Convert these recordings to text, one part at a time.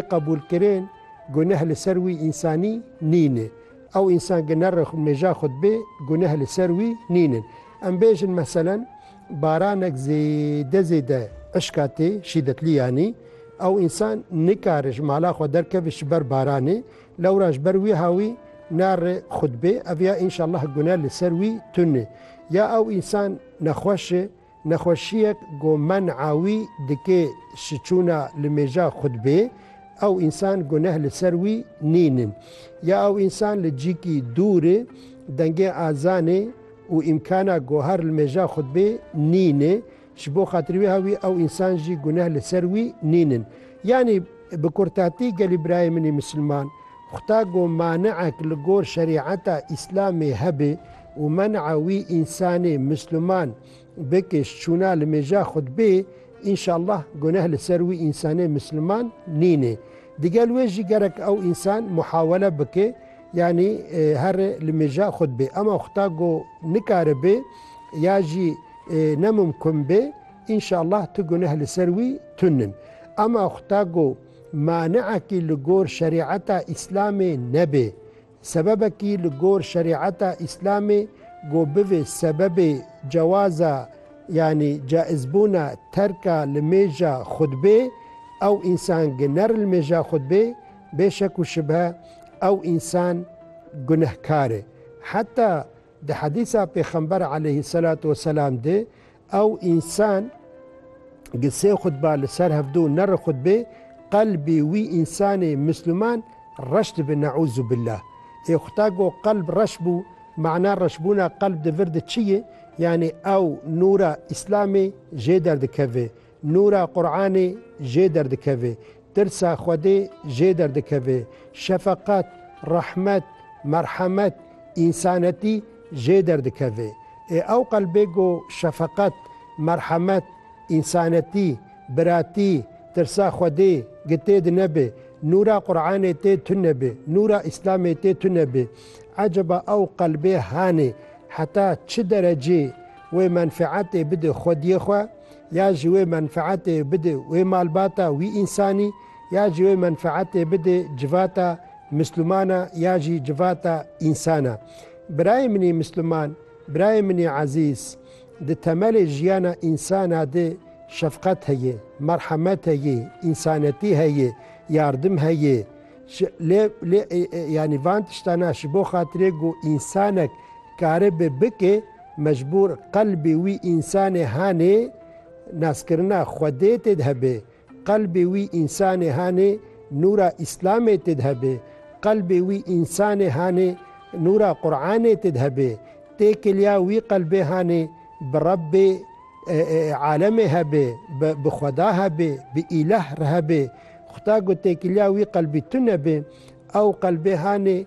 Qebûlkirin guneh li ser wî însanî nîn e. Ew însan ge ne re meja xwe dibê guneh li ser wî nîn in. Em bêjin meselen baranek zêde zêde eşka tê şîdetlî yanî ew însan nikare ji mala xwe derkeve ji ber baranê lewra ji ber wîha wî ne re xwe dibê ev ya înşallah guneh li ser wî tune. Ya ew însan nexweş e. Nexweşiyek ku men'a wî dikê şiçûna li mêja xwe di bê, ew însan guneh li ser wî nîn in. Ya ew însan li cîkî dûr e, dengê azanê û îmkana gohar li mêja xwe di bê nîn e, ji bo xatirî wê ha wî ew însan jî guneh li ser wî nîn in. Yanî bi kurtatî gelî birayê min ê misilman, xwta ku mani'ek li gor şerî'eta îslamê hebe, û men'a wî însanê misluman bi kêş çûna li mêja xwe dibê, înşallah guneh li ser wî însanê misluman nînê. Digel wê jî gerek ew însan muhawele bike yanî here li mêja xwe dibê. Ema xuta ku nikaribe ya jî nemumkun be, înşallah tu guneh li ser wî tun in. Ema xuta ku mani'ekî li gor şerî'eta Îslamê nebe, Sebebekî li gor şerîeta Îslamê ku bivê sebebê cewaza yanî caizbûna terka limêja xutbê, ew însan ki nerilmêja xutbê, bê şek û şibhe ew însan gunehkar e. Heta di hedîsa Pêxember aleyhî selatu weselam de Ew însan gi sê xutba li ser hevdû nerixutbê, qelbê wî însanê Misliman reş dibe neûzûbillah. Ê xuta go qelb reş bû, mana reşbûna qelb di vir de çi ye? Yanî ew nûra Îslamê jê derdikeve. Nûra Quranê jê derdikeve, tirsa Xwedê jê derdikeve, şefeqet, rehmet, merhemet, însanetî jê derdikeve. Ê ew qelbê ku şefeqet, merhemet, însanetî, biratî, tirsa Xwedê gi tê di nebe, nûra Quranê tê tunebe, nûra Îslamê tê tunebe. Eceba ew qelbê hanê heta çi derecê? wê menfeetê bide xwediyê xwe ya jî wê menfeetê bide wê malbata wî însanî ya jî wê menfeetê bide civata mislumana ya jî civata însana. Birayê minî misluman, birayê minî ezîz di temelê jiyana însana de şefqet heye, merhemet heye, însanetî heye, yardim heye, Lê lê yanî van tiştana ji bo xatirê ku însanek karibe bike mecbûr qelbê wî însanê hanê naskirina Xwedê tê de hebe, qelbê wî însanê hanê nûra Îslamê tê de hebe, qelbê wî însanê hanê nûra Quranê tê de hebe. Têkiliya wî qelbê hanê bi Rebbê Alemê hebê, bi xweda hebê, bi îlah re hebê. Xuda ku têkiliya wî qelbî tune bê, ew qelbê hanê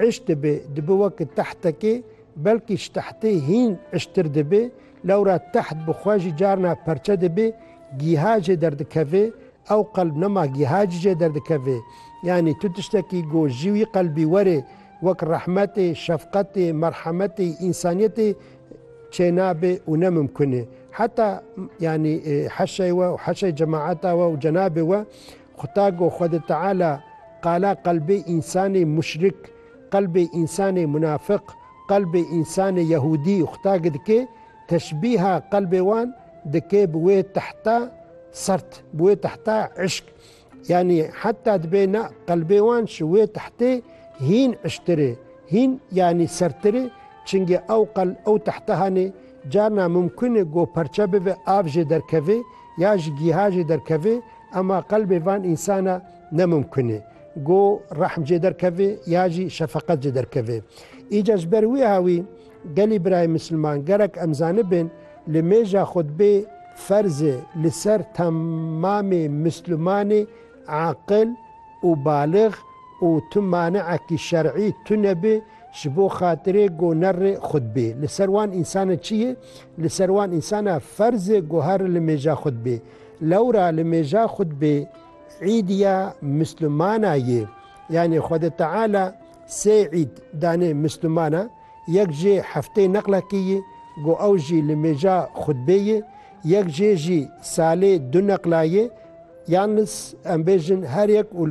îş dibê, dibi weke tehtekê, belkî ji tehtê hîn îştir dibê. Lewra teht bi xwe jî carna perçe dibê, gîha jê derdikevê. Ew qelb nema gîha jî jê derdikevê. Yanî tu tiştekî ku ji wî qelbî were, wek rehmetê, şefqetê, merhemetê, însaniyetê Çê nabe û ne mimkun e. Heta yanî heşê we û heşê cemaeta we û cenabê we Xwetago Xwedi Teala qala qelbê însanê muşrik, qelbê însanê munafiq, qelbê însanê yehûdî Xwetagi dike, teşbîha qelbê wan dike bi wê tehta sert, bi wê tehta îşk. Yanî heta dibê na qelbê wan ji wê tehtê hîn ijtir e, hîn yanî sertir e, çingê ew qel ew tehte hane, carna mimkun e go perçe bibe av jê derkeve ya ji gîha jê derkeve ema qelbê van însana ne mimkun e go rehm jê derkeve ya jî şefeqet jê derkeve. Îca ji ber wê hawî Gelê birayê misilman gerek em zanibin li mêja xutbê ferz e li ser temamê mislimanê aqil û balix û tu maneekî şer'î tune bi ji bo xatirê go nerri xutbê li ser wan însan e çiye li ser wan însan e ferz e go herri li mêja xutbê lewra li mêja xutbê îdiya mislimana ye yanê xwedê teala sê îd danê mislimana Yek jê hefteyê neqlekî yî, got ew jî li mêja xutbê yê, yek jê jî salê du neqla yê, yalnis em bêjin her yek û li.